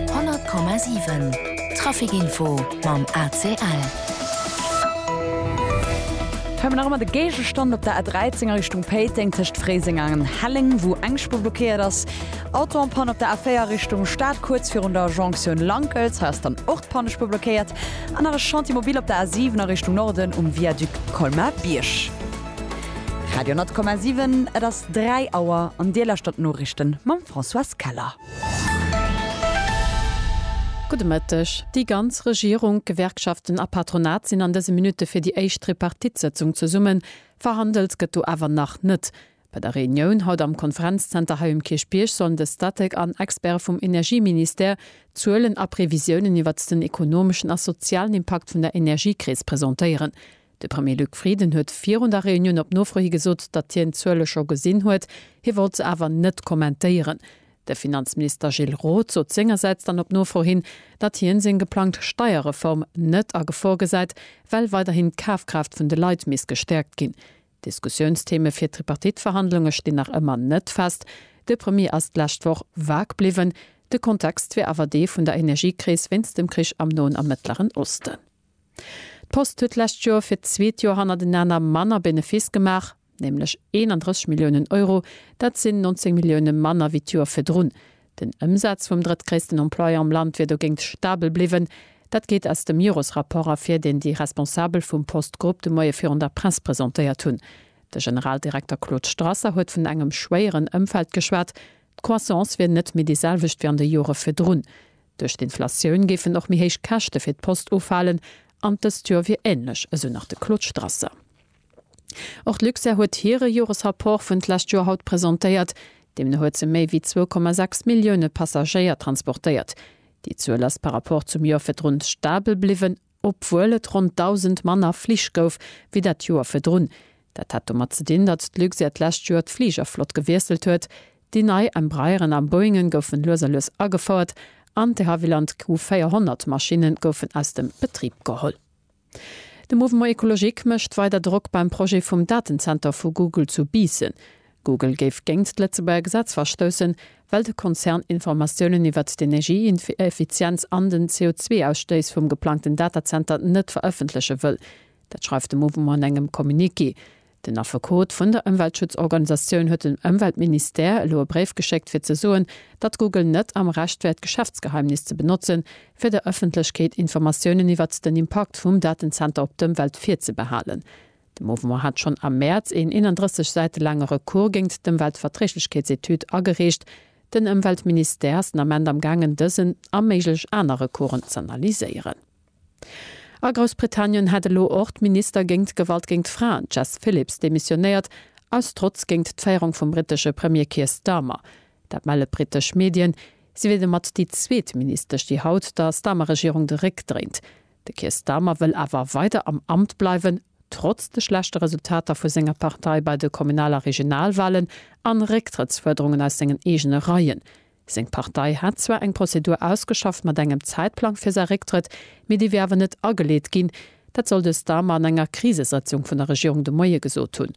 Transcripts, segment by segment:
100,7 Trafic Info mam ACL. Hei mer nach ëmmer de Géigestand op der A13 a Richtung Péiteng tëscht Fréiseng a Helleng, wou eng Spuer blockéiert ass. Auto en panne op der A4 Richtung Stad, kuerz virun der Jonktioun Lankels. Hei ass dann och d'Pannespuer blockéiert. An nach e Chantier mobil op der A7 a Richtung Norden um Viaduc Colmar-Bierg. Radio 10,7, et ass 3 Auer an Dir lauschtert d'Noriichten mam Françoise Keller. Gudde Mëtteg. Déi ganz Regierung, d'Gewerkschaften a Patronat sinn an dëse Minutte fir déi éischt Tripartite-Sëtzung zesummen. Verhandelt gëtt do awer nach net. Bei der Reunioun haut am Konferenzzenter hei um Kierchbierg sollen de Statec an Experte vum Energieministère d'Zuelen a Previsiounen iwwert den ekonomeschen a sozialen Impakt vun der Energiekris presentéieren. De Premier Luc Frieden huet virun der Reunioun op Nofro hi gesot, datt hien d'Zuele scho gesinn huet, hie wollt se awer net kommentéieren. De Finanzminister Gilles Roth sot sengersäits dann op Nofro hin, datt hien seng geplangt Steierreform net a Gefor gesäit, well weiderhin d'Kafkraaft vun de Leit misst gestäerkt ginn. Diskussiounstheme fir d'Tripartite-Verhandlunge stinn nach ëmmer net fest. De Premier ass d'lescht Woch vag bliwwen, de Kontext wier awer dee vun der Energiekris wéinst dem Krich am Noen a Mëttleren Osten. D'Post huet d'lescht Joer fir d'zweet Joer hannertenaner manner Benefiss gemaach, nämlech 31 Milliounen Euro, dat sinn 19 Millioune manner wéi d'Joer virdrun. Den Ëmsaz vum drëttgréissten Employeur am Land wier dogéint stabel bliwwen. Dat geet aus dem Jores-Rapport ervir, deen déi Responsabel vum Post-Grupp de Moie virun der Press presentéiert hunn. De Generaldirekter Claude Strasser huet vun engem schwéieren Ëmfeld geschwat. D'Croissance wier net méi déi selwecht wéi an de Jore virdrun. Duerch d'Inflatioun géifen och méi héich Käschte fir d'Post ufalen an dëst Joer wier änlech, esou nach de Claude Strasser. Och d'Luxair huet hire Joresrapport vun d'lescht Joer haut presentéiert. Deemno huet se méi wéi 2,6 Millioune Passagéier transportéiert. Déi Zuel ass par Rapport zum Joer virdrun stabel bliwwen. obwuel et ronn 1.000 manner Flich gouf wéi dat Joer virdrun. Dat hat domat ze dinn, datt d'Luxair d'lescht Joer d'Fligerflott gewiesselt huet. Déi nei Embraeren a Boeingen goufen lues a lues agefouert an d'Havilland Q400 Maschinne goufen aus dem Betrib geholl. De Mouvement Ecologique mécht weider Drock beim Projet vum Datenzenter vu Google zu Biissen. Google géif géint d'Lëtzebuerger Gesetz verstoussen, well de Konzern Informatiounen iwwert d'Energieeffizienz an den CO2-Ausstéiss vum geplangten Datazenter net verëffentleche wëll. Dat schreift de Mouvement an engem Communiqué. Den Affekot vun der Ëmweltschutzorganisatioun huet dem Ëmweltministère elo e Bréif geschéckt, fir ze soen, datt Google net am Recht wär d'Geschäftsgeheimnis ze benotzen, fir der Ëffentlechkeet Informatiounen iwwert den Impakt vum Datenzenter op d'Ëmwelt virzebehalen. De Mouvement hat schonn am Mäerz een 31 Säite laange Recours géingt d'Ëmweltverträeglechkeetsetüd agereecht. Den Ëmweltministère ass den Ament am gaangen dësen a méiglech aner Recoursen z'analyséieren. A Groussbritannien hat elo och d'Minister géingt Gewalt géingt Fraen Jess Phillips demissionéiert, aus Trotz géingt d'Féierung vum brittesche Premier Keir Starmer. Dat melle brittesch Medien. Si wier domat déi zweet Ministesch, déi haut der Starmer-Regierung de Réck dréint. De Keir Starmer wëll awer weider am Amt bleiwen, trotz de schlechte Resultater vu senger Partei bei de Kommunal a Regionalwalen an Récktrëttsfuerderungen aus sengen eegene Reien. Seng Partei hat zwar eng Prozedur ausgeschafft mat engem Zäitplang fir säi Récktrëtt, mee dee wier awer net ageleet ginn. Dat soll de Starmer an enger Krisesëtzung vun der Regierung de Moie gesot hunn.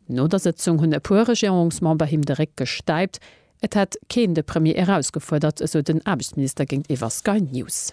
No der Sëtzung hunn e puer Regierungsmember him de Réck gestäipt. Et hätt keen de Premier erausgefuerdert, esou den Aarbechtsminister géintiwwer Sky News.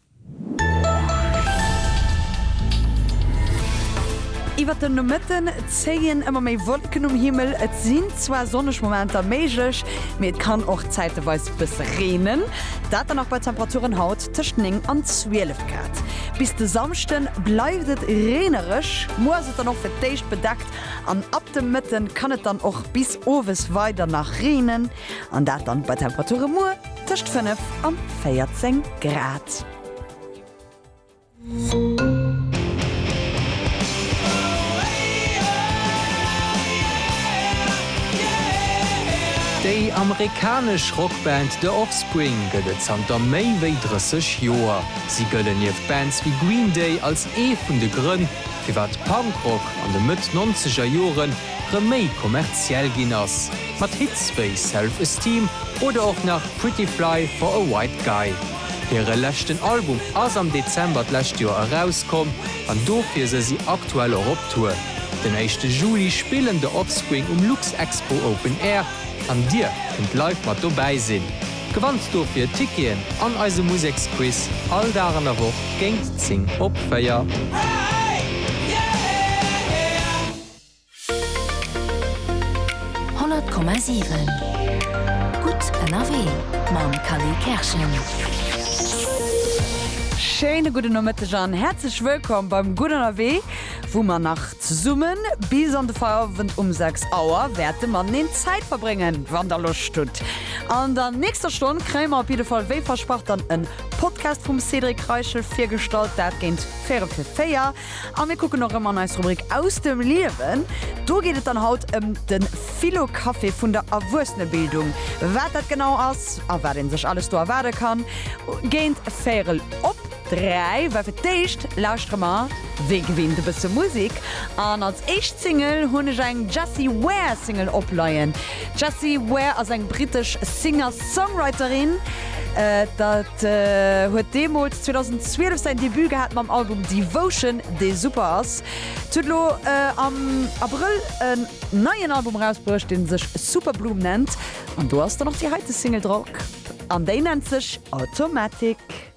Iwwer den Nomëtten zéien ëmmer méi Wolken um Himmel. Et sinn zwar sonneg Momenter méiglech, mee et kann och zäiteweis bësse reenen. Dat dann och bei Temperaturen haut tëscht 9 an 12 Grad. Bis de Samschde bleift et reenereg, muer ass et dann och fir d'éischt bedeckt an ab de Mëtte kann et dann och bis owes weider nach reenen. An dat dann bei Temperature muer tëscht 5 an 14 Grad. Déi amerikanesch Rockband The Offspring gëtt et zanter méi wéi 30 Joer. Si gëllen nieft Bands wéi Green Day als ee vun de Grënn, firwat Punkrock an de Mëtt nonzeger Jore rëm méi kommerziell ginn ass, mat Hits wéi Self Esteem oder och nach Pretty Fly for a White Guy. Hire leschten Album ass am Dezember d'lescht Joer erauskomm an dofir se si aktuell och op Tour. Den éischte Juli spillen The Offspring um Luxexpo Open Air an dir kënnt live mat dobäi sinn. Gewannt dofir Ticketen an eise Museksquiz all Dag an der Woch géingt 10 op 4. Schéine gudden Nomëtteg an häerzlech wëllkomm beim Gutt Ënnerwee! wou mer nach zesummen bis an de Feierwend um 6 Auer wäerte mateneen Zäit verbréngen, wann der Loscht hutt. An der nächster Stonn kréie mer op jidde Fall wéi versprach dann en Podcast vum Cédric Reichel virgestallt, dat géint véierel fir véier. A mir kucken erëm an eis Rubrik Aus dem Liewen. Do geet et dann haut ëm de Philo-Café vun der Erwuessenebildung. Wat dat genau ass a wat een sech alles do erwaarde kann, géint véierel op. 3 war fir d'éischt, lauschtere mer wéi gewinnt e bësse Musik an als éischt Single hunn ech eng Jessie Ware Single opleien. D'Jessie Ware ass eng brittesch Singer-Songwriterin, dat huet deemools 2012 säin Debut gehat mam Album Devotion, dee super ass. Si huet elo am Abrëll en neien Album erausbruecht, dee sech Superbloom nennt an do ass dann och déi heite Single dra, an déi nennt sech Automatic.